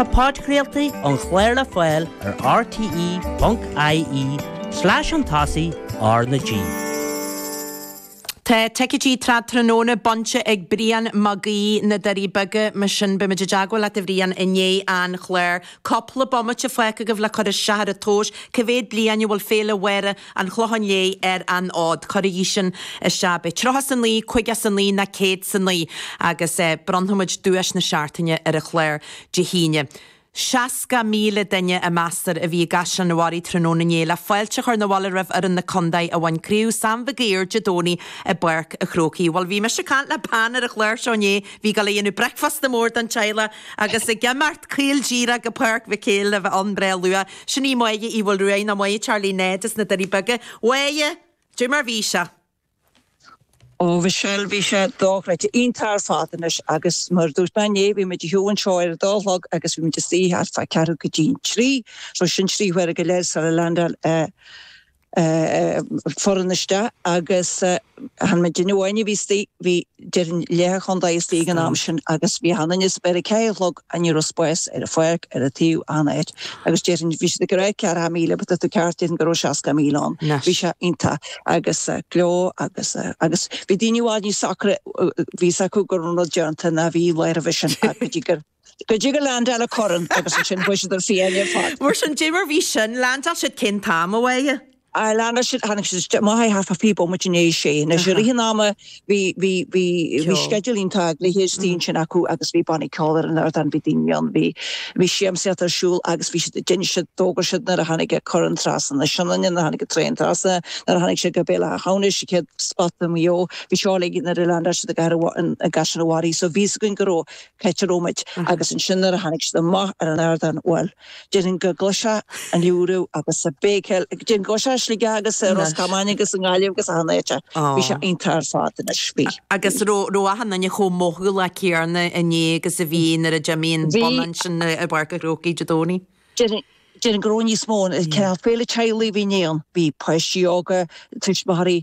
Tá podchraoltaí an chláir le fáil ar rte.ie/an tosaí ár na G. Tá ticéidí Trad Tráthnóna bainte ag Brian Mag Aoidh na Doirí Beaga, mar sin beimid i dteagmháil leat a Bhrian i ndiaidh an chláir. Cúpla bomaite fágtha agaibh le cur isteach ar an tomhas, cé mhéad bliain a bhfuil Féile Mháire an Chlocháin Léith ar an fhód. Cuirigí sin isteach. Beidh tríocha is a naoi, caoga is a naoi ná céad is a naoi agus bronnfaimid duais na seachtaine ar an chlár Dé hAoine. Seasca míle duine a meastar a bhí i gCaisleán an Bharraigh tráthnóna inné le fáilte a chur na bhaile roimh fhoireann na condae a bhain Craobh Sam Mhig Uidhir Dé Domhnaigh i bPáirc a' Chrócaigh. Bhuel bhí mise ag caint le bean ar an chlár seo inné, a bhí ag gabháil a dhéanamh bricfeasta mór don teaghlach agus ag imeacht caol díreach go Páirc Mhic Éil le bheith ann breá luath. Sin í Máire Uí Mhaolruaidh, nó Máire Charlie Ned as na Doirí Beaga. A Mháire! Caidé mar a bhí sé? Ó a Mhichelle, bhí sé dochreidte, iontach ar fad anois agus mar a dúirt mé inné, bhí muid ag siúl anseo ar a dó a chlog agus bhí muid istigh thart fá ceathrú go dtí an trí, so sin trí huaire go leith sula leaindeáil an. foireann isteach agus chan muidinne amháin a bhí istigh, bhí déarfainn leath an chontae istigh ag an am sin agus bhí an inius ar a ceathair a chlog a ní raibh spás ar an pháirc ar a taobh an áit agus deir bhí siad ag cur ar 40 míle but tá tú ceart déarfainn go raibh 60 míle ann bhí sé iontach agus gleo agus agus bhí daoine i bhfad níos socraithe bhí fhios acu go raibh an rud déanta ná bhí Laoire Vision ach go dtí gur Go dtí gur leaindeáil an corn agus ansin bhí siad ar fiáine ar fad. Mar sin caidé mar a bhí sin, leaindeáil siad cén t-am a bhí. Ar leaindeáil siad tháinig siad isteach b'fhéidir fiche bomaite tar éis a sé. Anois i rith an ama bhí, bhí, bhí, bhí sceideal iontach ag na hirisí ansin acu agus bhí bannaí ceoil ar an ardán, bhí daoine ann, bhí, bhí siamsaíocht ar siúl agus bhí siad, d'inis siad, d'fhógair siad nuair a tháinig an corn trasna na Sionainne, nuair a tháinig an traein trasna, nuair a tháinig sé go Béal Átha hAmhnais, an chéad spota i Maigh Eo, bhí seo uilig nuair a leaindeáil siad i gcathair, i gCaisleán an Bharraigh. So bhí fhios againn go raibh. Peteromid agus ansin nuair a tháinig siad amach ar an ardán bhuel, déarfainn go gcloisfeá an liúireach agus an bhéicíl, déarfainn go bhfuil sé i Sligeach agus i Ros Comáin agus i nGaillimh agus achan áit, bhí sé iontach ar fad anois, bhí. Agus raibh, raibh achan duine chomh mothálach céanna inné agus a bhí nuair a d'imigh an whistle ansin i bPáirc an Chrócaigh Dé Domhnaigh? Déarfainn, déarfainn go raibh níos mó, cineál féile teaghlaigh a bhí inné ann, bhí páistí óga, tuismitheoirí,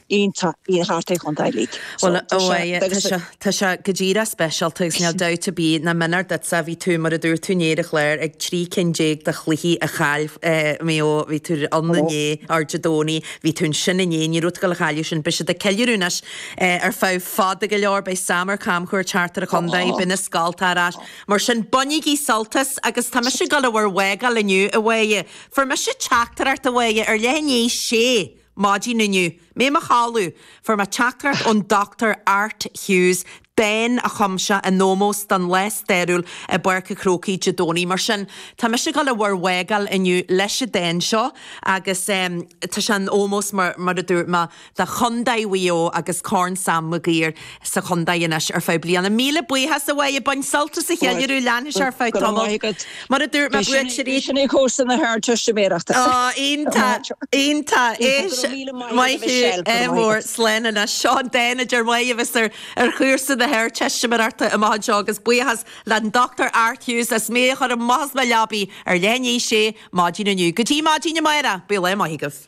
iontach bhí thart ar an chontae uilig so tá sé agus tá. Tá sé go díreach speisialta agus níl dabht ar bith ná méanar duitse bhí tú mar a dúirt tú inné ar an chlár ag trí cinn déag de chluichí a chaill Maigh Eo bhí tú ann inné or Dé Domhnaigh bhí tú ansin inné ní raibh tú ag gabháil a chailleadh sin beidh siad ag ceiliúradh anois ar feadh fada go leor beidh Sam ar camchuairt thart ar an chontae beidh na scoltacha ar ais mar sin bainigí sult as agus tá mise ag dul a bhur bhfágáil inniu a Mháire fuair mise teachtaireacht a Mháire ar leith inné Sea. Maidin inniu, mé i mo chodladh, fuair mé teachtaireacht ón Dr Art Hughes, dán a chum sé in ómós don lá stairiúil i bPáirc an Chrócaigh Dé Domhnaigh. Mar sin, tá mise ag dul i bhur bhfágáil inniu leis an dán seo agus tá sé in ómós, mar a dúirt mé, do Chontae Thír Eoghain agus Corn Sam Maguire. sa chontae anois ar feadh bliana. Míle buíochas a Mhaidhe, bain sult as an cheiliúradh, leanfaidh sé ar feadh tamaill. Mar a dúirt mé, buaiteoirí. Sin é cúrsa na hArdteistiméireachta. Oh, iontach, iontach. Éist, Maitiú, ádh mór, slán anois. Seo an dán a deir Maidhe a bheas ar chúrsa na hArdteistiméireachta amach anseo agus buíochas le an Dr Art Hughes as mé a chur amach as mo leabaidh ar leath i ndiaidh a sé maidin inniu. Go dtí maidin amárach, bíodh lá maith agaibh.